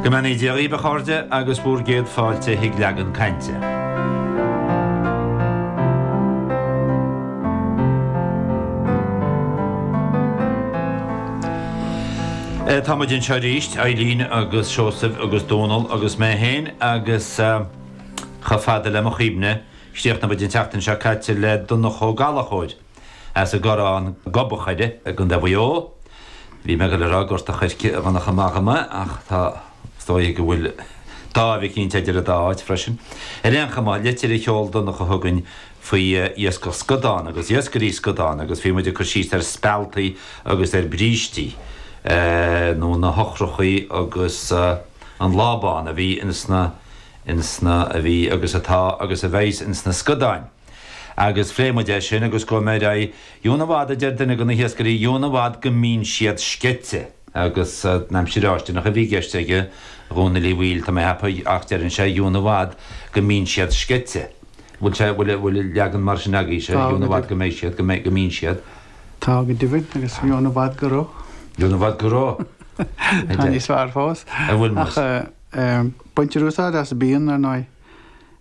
Go mbeannaí Dia dhaoibh a chairde agus bhúr gcéad fáilte chuig Leagan Cainte. Tá muid anseo aríst, Eilín agus Seosamh agus Dónall agus mé féin agus chomh fada le mo chuimhne, chríochnaigh muid an tseachtain seo caite le Donncha Ó Gallachóir. As an gCorrán Gob an Choire i gContae Mhaigh Eo. Bhí mé ag goil a rá Gort an Choirce a bhainfeadh amach i mB ach tá is dóigh go bhfuil dáimh eicínt eidir an dá áit freisin. Ar aon chuma, litir a sheol Donncha chugainn faoi iascach scadán agus iascairí scadán agus bhí muid ag cur síos ar spealtaí agus ar brístí nó na heochrachaí agus an lábán a bhí ins na ins na a bhí agus atá agus a bheas ins na scadáin. Agus phléigh muid é sin agus gabhfaidh mé ar aghaidh dheamhan i bhfad, a deir duine de na hiascairí, dheamhan i bhfad go mbíonn siad sceite. Agus an aimsir fháistineach a bhí i gceist aige, a Dhónaill Uí Bhaoill, tá mé ag ceapadh, ach deireann sé dheamhan i bhfad go mbíonn siad sceite. Bhfuil sé, bhfuil, bhfuil leagan mar sin agaibhse, Tá dheamhan i bhfad go mbeidh siad, go mbeidh, go mbíonn siad? Tá go deimhin, agus dheamhan i bhfad go raibh. Dheamhan i bhfad go raibh, a Tá deir. níos fearr fós. An bhfuil, Muiris? Ach eh, baintear úsáid as bíonn, ar ndóigh.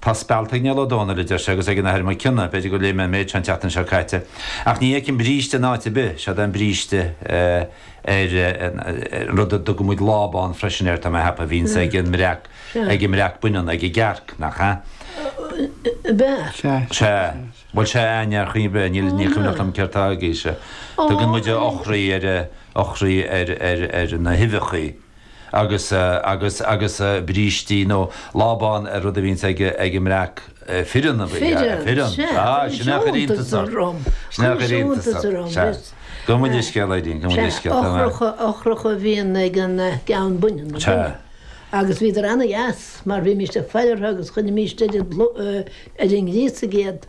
Tá spealt ag Niall Ó Dónaill, a deir sé, agus ag an Athair Mac Cionnaith, b'fhéidir gur léigh mé an méid seo an tseachtain seo caite, ach ní fheicim bríste in áit ar bith, séard é an bríste ar an rud a dtugann muid lábán freisin air, tá mé ag ceapadh, a bhíonns ag an mbreac, ag an mbreac baineann, ag an gcearc, nach ea? Fireann. Sea, sea. Bhuel, sea ar chaoi ar bith, níl, ní cuimhneach liom céard atá agaibhse. Tugann muid eochraí ar, eochraí ar, ar, ar na huibheachaí. agus, agus, agus brístí nó lábán ar rud a bhíonns ag, ag an mbreac fireann, fireann, fireann, sea, sin é a chuir iontas orm, sin é a chuir iontas orm, sea, go bhfuil a scéal againn, go bhfuil a scéal againn, sea, eochracha, eochracha a bhíonn ag an gceann baineann, sea, agus bhíodar ana-dheas mar bhímíst ag faire orthu agus chuirimíst idir, idir an ghríosaigh iad.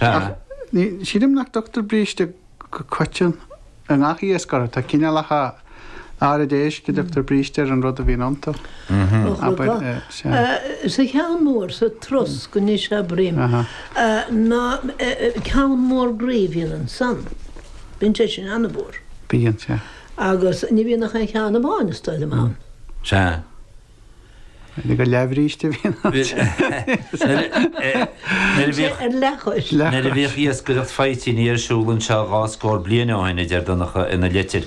Ach ní, sílim nach dtugtar bríste go coiteann i ngach iasc orthu. Tá cineálacha áirid éisc a dtugtar bríste ar an rud a bhíonn iontu. Abair, sea. Sa cheann mór, sa trosc anois abraím, ná ceann mór groí a bhíonn ansan. Bíonn sé sin an-mhór. Bíonn, sea. Agus ní bhíonn ach aon cheann amháin, is dóigh liom, ann. Sea. Mhínigh gur leathbhríste a bhí in ann teacht. Nuair a bhíodh iascaireacht faoitíní ar siúl anseo dhá scór bliain ó shin, a deir Donncha ina litir,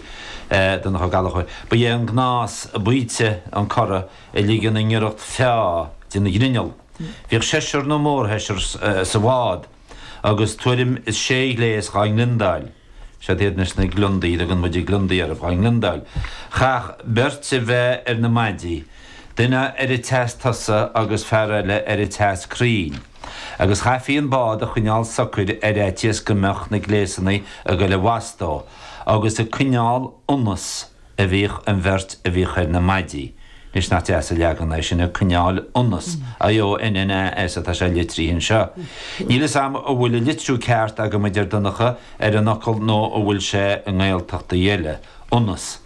Donncha Ó Gallachóir, ba é an gnás baoite an corradh a ligean i ngiorracht feá den ghrinneall. Bhíodh seisear nó mórsheisear sa bhád. agus tuairim is sé ghléas dhá ngliondáil, siad iad anois na gliondaí a dtugann muide gliondaí orthu, dhá ngliondáil, chaithfeadh beirt a bheith ar na maidí, duine ar an tseas tosaigh agus fear eile ar an tseas crainn, agus chaithfí an bád a choinneáil socair ar fhaitíos go mbeadh na gléasanna ag goil i bhfastó agus ag coinneáil ionas, a bhíodh an bheirt a bhíodh ar na maidí anois nach deas an leagan é sin ag coinneáil ionas IONN AS atá sé litrithe anseo. Níl fhios agam an bhfuil an litriú ceart agam a deir Donncha ar an fhocal nó an bhfuil sé i nGaeltachtaí eile, ionas.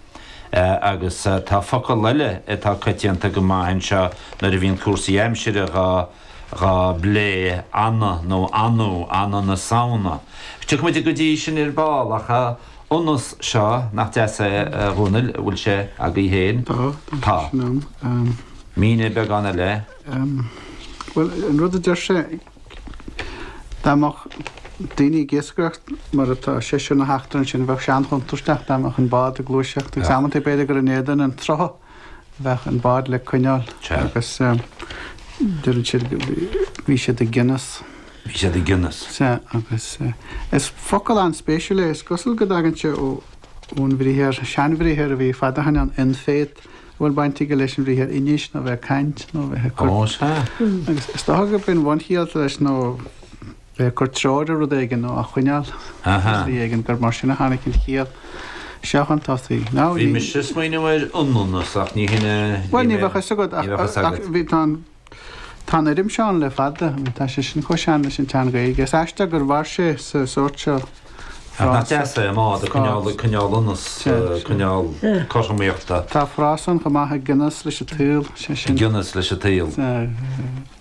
Agus tá focal eile atá coitianta go maith anseo nuair a bhíonn cúrsaí aimsire dhá dhá bplé, anna nó annú, anna na Samhna. Tiocfaimid go dtí sin ar ball ach. ionas, seo, nach deas é, a Dhomhnaill, bhfuil sé agaibh féin? Tá, tá, sin ann. Mínigh beagán eile. Bhuel, an rud a deir sé, dá mbeadh daoine ag iascaireacht mar atá seisear na heachtra ansin, bheadh sé an-chontúirteach dá mbeadh an bád ag gluaiseacht, agus amanta b'fhéidir gur in éadan an tsrutha. bheadh an bád le coinneáil agus deireann siad bhí siad i gcionas. Bhí siad i gcionas. Sea agus is focal an-spéisiúil é, is cosúil go dtagann sé ó ón bhriathar, seanbhriathar a bhí fada ó shoin ann, in-fét, a bhfuil baint aige leis an bhriathar inis nó a bheith ag caint nó a bheith ag cur. Ó sea. Agus is dócha gurb í an bhunchiall leis nó. bheith ag cur treoir ar rud éigin nó á choinneáil ar shlí éigin, gur mar sin a tháinig an chiall seo chun tosaigh. Ná ní. Bhí mise ag smaoineamh ar ionnanas ach ní shin é. Bhuel, ní bheadh a fhios agat ach, ach bhí, tá an, tá an fhoirm seo ann le fada, tá sé sin chomh sean leis an tSean-Ghaeilge. Is aisteach gur mhair sé sa sórt seo frása. Nach deas é, an bád ag coinneáil, ag coinneáil ionas, ag coinneáil cothromaíochta. Tá frása ann chomh maith, i gcionas leis an tsaol, sé sin. I gcionas leis an tsaol.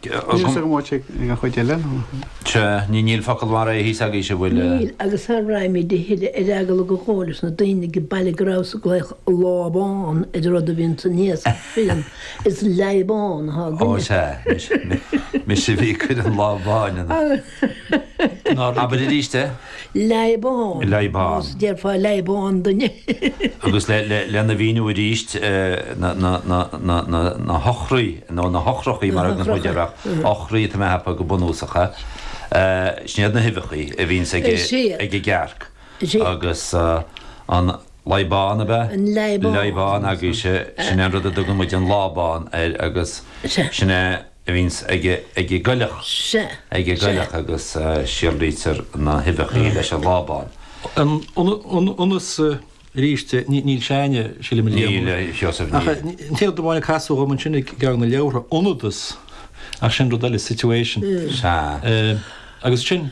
Níl fhios agam áit ag an chuid eile nó. Sea, ní, níl focal mar é thíos agaibhse, an bhfuil? Níl, agus sara raghaimíd a thuilleadh ar eagla go gcomhairfeadh na daoine age baile go rabhas ag glaoch 'lábán' ar an rud a bhíonn san iasc fireann, is 'leadhbán' athá againne. Ó sea, mise a bhí ag cur an lábán ann. Abair arís é. Leadhbán. Leadhbán. Nó déarfá leadhbán dúinn. Agus lena mhíniú arís, na heochraí, nó na heochrachaí mar a thugann muid air ach eochraí atá mé a cheapadh go bunúsacha, sin iad na huibheachaí a bhíonns ag an gcearc agus an. Leadhbán, ab ea? An leadhbán. Leadhbán agaibhse, sin é an rud a dtugann muid an lábán air agus sin é a bhíonns ag an gcoileach, ag an gcoileach agus síolraítear na huibheachaí leis an lábán. Ionas, arís, níl Seánie, sílim, ag léamh. Níl, a Sheosaimh, níl. Ach an t-aon amháin a casadh dhom ansin i gceann de na leabhartha, ionadas, ach sin rud eile, situation. Sea. Agus ansin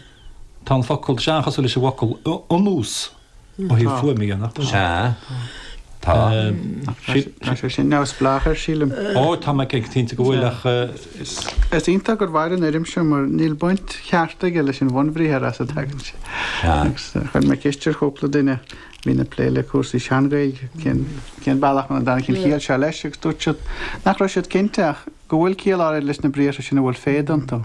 tá an focal, tá sé an-chosúil leis an bhfocal, ionnús. Ó thaobh fuaime dhe, nach ea. Sea. Tá. Tá sé sin neamhspleách air, sílim. Ó, tá mé cinnte go bhfuil ach is. Is iontach gur mhair an fhoirm seo mar níl baint cheart aige leis an bhunbhriathar as a dtagann sé. Sea. Agus chuir mé ceist ar chúpla duine a bhíonn ag plé le cúrsaí sean-Ghaeilge cén cén bealach a dtáinig an chiall seo leis agus dúirt siad nach raibh siad cinnte ach go bhfuil ciall áirid leis na briathra sin a bhfuil féad iontu.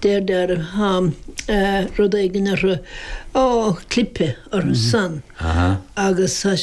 Deirtear atá rud éigin orthu, á, clipe orthu san, agus tá sé.